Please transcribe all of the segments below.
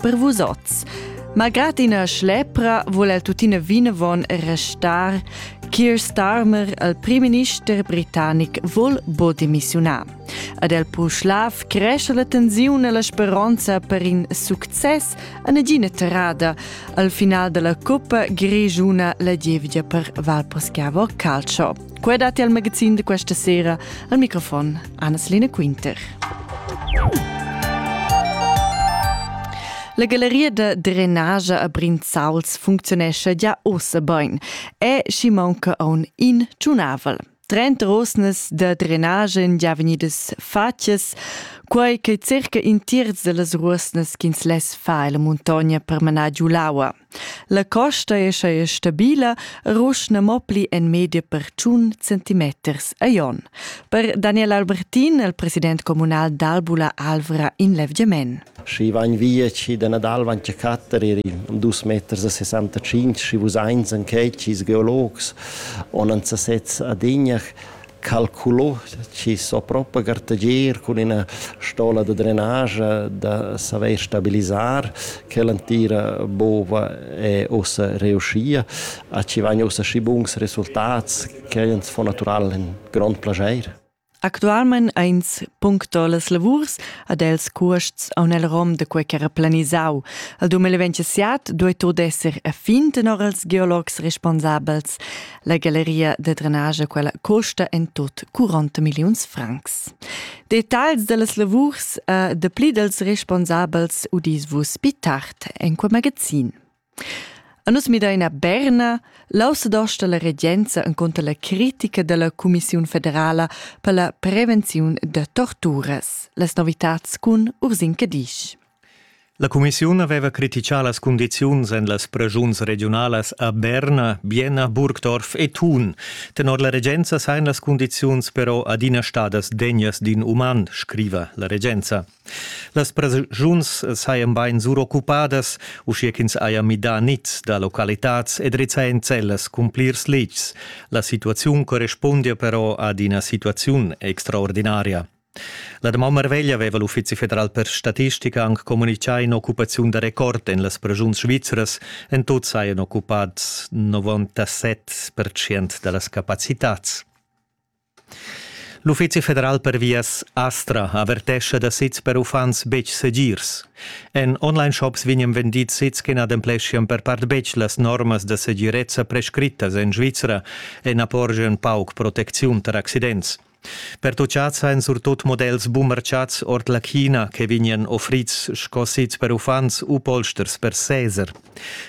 per vus oz. Malgrad ina schlepra vul el tuttina vinavon restar Keir Starmer, il primminister britannic, vul bo demissiunar. Ad el Puschlav cresce la tensiun e la speronza per in success a negina terrada al final della coppa grigiuna la gievgia per Valposchiavo Calcio. Quei datti al magazin di questa sera al microfon Anna-Selina Quinter. La galleria da drenage a Brinzauls functionescha già ossa bain e schi manca aun in tunavel. Trenta rosnas da drenage en già vegnidas fatgas, quai che circa in terz da las rosnas ch'ins less far la muntogna per manar giu l'aua. La costa è scheia stabila e ruschna mo pli en media per tschun centimeters a jon. Per Daniel Albertin, il president communal d'Albula Alvra in Levgiamen. Schi vain via chi da Nadal van che catterer am dus meters a 65, schi vus eins an checcis geologs, on an sa sez ad ignach, calculò chi s'ho propa gartagier cun üna stola da drenage da savair stabilisar quella entira bova e ussa riuschia a chi vain ussa schi buns resultats ch'el ans fo natüral ün grond plaschair. Actualmain ains puncto las lavurs ad els cuosts aun el rom da quei ch'era planisau. Al 2027 duei tur d'esser a fin tenor els geologs responsabels. La galleria da drenage quella costa en tot 40 milliuns francs. Detagls dallas lavurs uh, de pli dels responsabels udis vus pi tard en quel magazin. A nus mideina Berna, l'ausedosta la regenza en conto la critica della Commissione federala per la prevenzione de torturas. Las novitats cun Ursin Cadisch. La cumissiun aveva critichà las cundiziuns en las preschuns regiunalas a Berna, Bienna, Burgdorf e Thun. Tenor la regenza sajan las cundiziuns però adina stadas degnas d'in uman, scriva la regenza. Las preschuns sajan bain suroccupadas, uschia ch'ins haja midà niz da localitads e drizzà enzellas cun plirs letgs. La situaziun correspundia però ad ina situaziun extraordinaria. La damaun marveglia aveva l'Uffizi federal per statistica anc communitgà in'occupaziun da record en las prajuns svizras. En tut sajan occupads 97% da las capacitads. L'Uffizi federal per vias Astra avertescha da sits per uffants betg segirs. En online-shops vegnan vendids sits che n'adempleschian per part betg las normas da segirezza prescrittas en Svizra e na porgian pauc protecziun tar accidents. Pertuchads ein surtut models bumerciats ord la China che vegnan offrids sco sez per uffants u polsters per seser.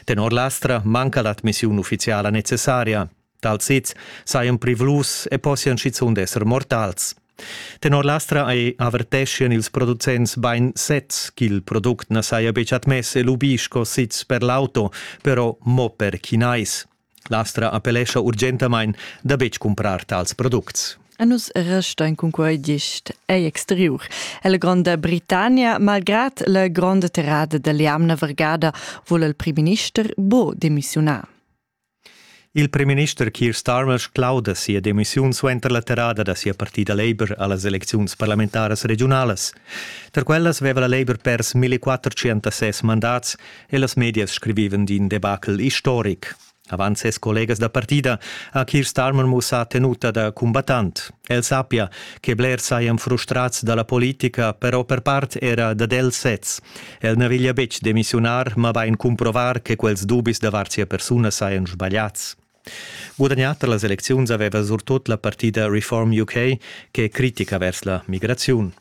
Tenor l'ASTRA manca l'admissiun ufficiala necessaria. Tals sez sajan privlus e possian schizunt esser mortals. Tenor l'ASTRA averteschian ils producents bain sezs ch'il product na saja betg admess e lubì sco sez per l'auto, però mo per chinais. L'Astra appellescha urgentamain da betg cumprar tals products. A nus restain cunquai gist egl exteriur e la Gronda Britannia. Malgrad la gronda terrada da l'jamna vargada vul il primminister buc demissiunar. Il primminister Keir Starmer sclauda sia demissiun suenter la terrada da sia partida Labour a las elecziuns parlamentaras regiunalas. Tar quellas veva la Labour pers 1406 mandats e las medias scrivivan d'in debacle historic. Avant ses collegas da partida ha Keir Starmer mussà tenuta da cumbattant. El sappia che blers sajan frustrads da la politica, però per part era dad els sez. El na veglia betg demissiunar, mabain cumprovar che quels dubis davart sia persuna sajan sbagliads. Gudagnà tar las elecziuns aveva surtut la partida Reform UK che critica vers la migraziun.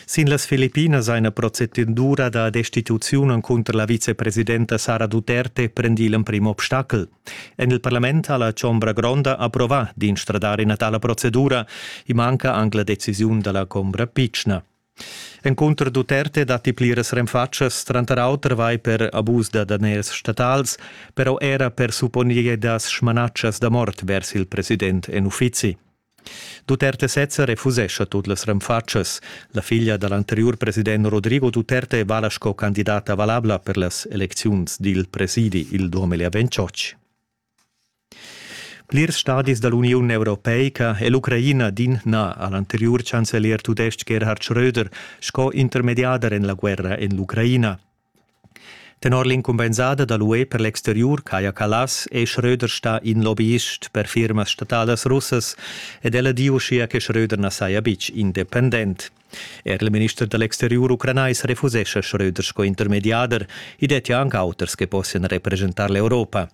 Sin las Filippinas ha ina procedura da destituziun encunter la vicepresidenta Sara Duterte prendì l'emprim obstacel. En il parlament ha la Chombra Gronda approvà d'instradare ina tala procedura. I manca anc la decisiun da la Chombra Pitschna. Encunter Duterte datti pliras renfatschas, tranter auter vai per abus da daners statals, però era per supponir da smanatschas da mort vers il president en uffizi. Duterte sezza refusescha tut las renfatschas. La figlia da l'anteriur president Rodrigo Duterte vala sco candidata valabla per las elecziuns dil presidi il 2028. Plirs stadis da l'Uniun Europeica è l'Ucraina din na a l'anteriur chancelier tudestg Gerhard Schröder sco intermediader en la guerra en l'Ucraina. Tenor l'incumbensada da l'UE per l'exteriur Kaja Kallas è Schröder stà in lobbyist per firmas statalas russas ed el ha di uschia che Schröder na saja betg independent. Er il minister da l'exteriur ucranais refusescha Schröder sco intermediader. I dettia anc auters che possian represchentar l'Europa.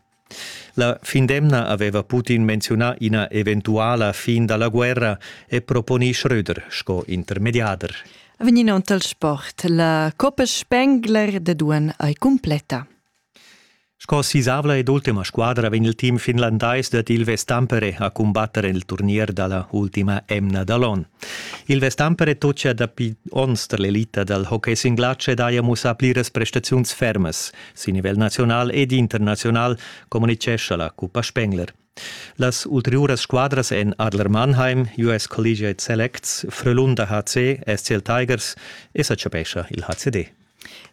La findemna aveva Putin menziunà ina eventuala fin da la guerra e proponì Schröder sco intermediader. Venind dal sport, la Coppa Spengler da Duan ei cumpleta. Sco sisavla ed ultima squadra vegn il team finlandais dad Ilves Tampere a cumbatter il turnier dalla ultima emna da l'on. Ilves Tampere tocia dapi onns tar l'elita dal hockey sin glatsch ed haja mussà pliras prestaziuns fermas. Sin nivel naziunal ed internaziunal communitgescha la Cuppa Spengler. Las ulteriuras squadras èn Adler Mannheim, US Collegiate Selects, Frölunda HC, SCL Tigers e sa chapescha il HCD.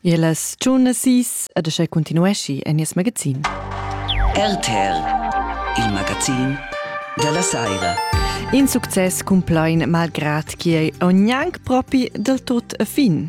E las giunasis ed aschè continueschi en nies magazin. RTL, il magazin della Saira. In success cumplain malgrad che ogni anche propi del tot fin.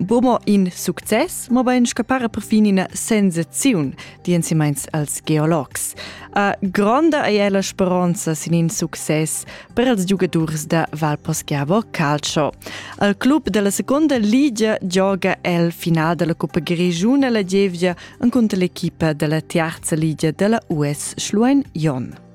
Bomo in success, mobein scappare perfin ina sensaziun, di insimains als geologs. A gronda ei è la speronza sin in success per els giugadurs da Valposchiavo Calcio. Al club della seconda ligia gioga el final della Coppa Grigiuna la gievgia encunter l'equipa della terza ligia della US Schluein Jon.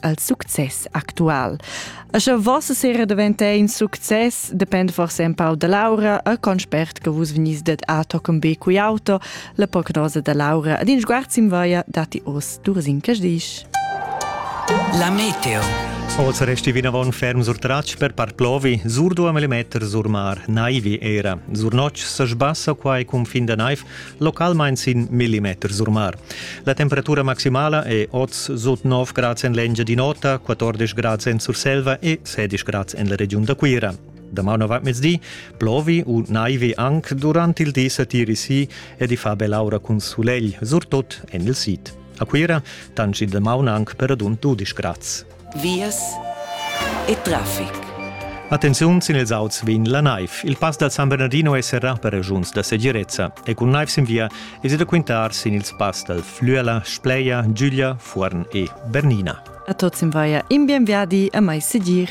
al success actual. E sche vossa sera diventa in success, depend forse un pau da Laura e con spert che vus venies det a toccam be cui auto, la prognosa da Laura ad in sguard sim vaia dati os duas in casdisch. La meteo. Oz resti vinavon ferm sur tratsch per par plovi, sur duam millimeter sur mar, naivi era. Sur notg se sbassa quai cun fin da naiv, localmain sin millimeter sur mar. La temperatura maximala è oz sut 9 grads en l'Engiadin'Ota, 14 grads en Surselva e 16 grads en la regiun da Cuira. Damano va mezdi, plovi u naivi anc durant il di satiri si e di fa bell'aura cun sulegl, surtut en il sid. A Cuira tanci da maun anc per radund 12 grads. vias e traffic. Attenziun sin ils auts vegn la naiv. Il pass dal San Bernardino è serrà per regiuns da segirezza e cun naiv sin via èsi da quintar sin ils pass dal Flüela, Spleia, Giuglia, Fuorn e Bernina. A tuts in vaia in bien viadi e mai segir.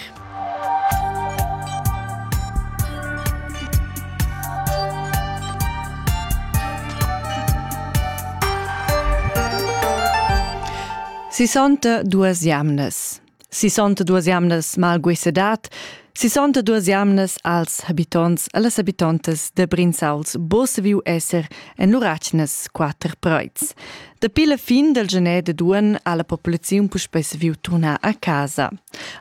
Sisonta duas jamnas. Sisonta duas jamnas malguisedat. Sisonta duas jamnas als habitonts e las habitontas de Brinzauls bo saviu esser en lur atgnas quater preuts. Dapi la fin del gener de duan ha la populaziun puspei saviu turnar a casa.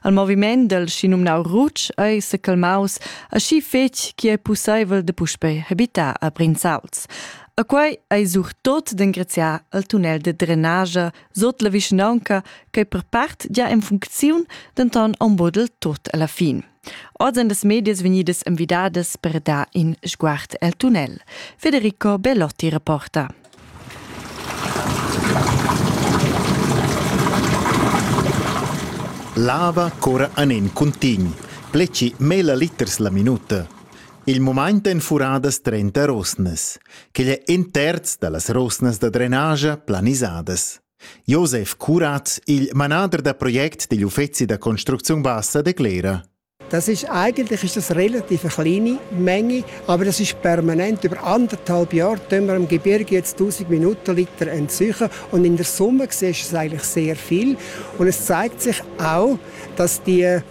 Al moviment del schinumnau Rutsch ei secalmaus aschi fetg che ei pusseivel de puspei habitar a Brinzauls. A quai ei surtot d'engraziar al tunnel de drenagia sot la vischnaunca che per part gia en funcziun, denton en bodel tot alla fin. Oz ein las medias vegnidas envidadas per dar in sguard el tunnel. Federico Bellotti reporta. Lava cora anen contign. Pleci mela liters la minuta. Il mumaint èn furadas trenta rosnas. Quel è in terz da las rosnas da drenagia planisadas. Josef Curat, il manader da project degl uffezi da construcziun bassa, declera. Das ist eigentlich ist das relativ eine kleine Menge, aber das ist permanent. Über anderthalb Jahre tun wir am Gebirge jetzt 1000 Minutenliter entziehen und in der Sommer siehst du es eigentlich sehr viel. Und es zeigt sich auch, dass die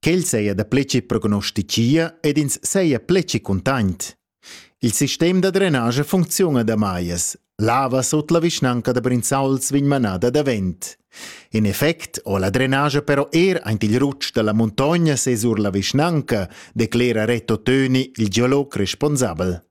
Quel seia da pleci prognosticia ed ins seia pleci cuntaint. Il sistem da drenage funcziuna da maias. Lava sut la vischnanca da Brinzauls vegn manada davent. In effect ho la drenage però er aint il rutsch dalla muntogna sesur la vischnanca, declera Reto Töni, il geolog responsabel.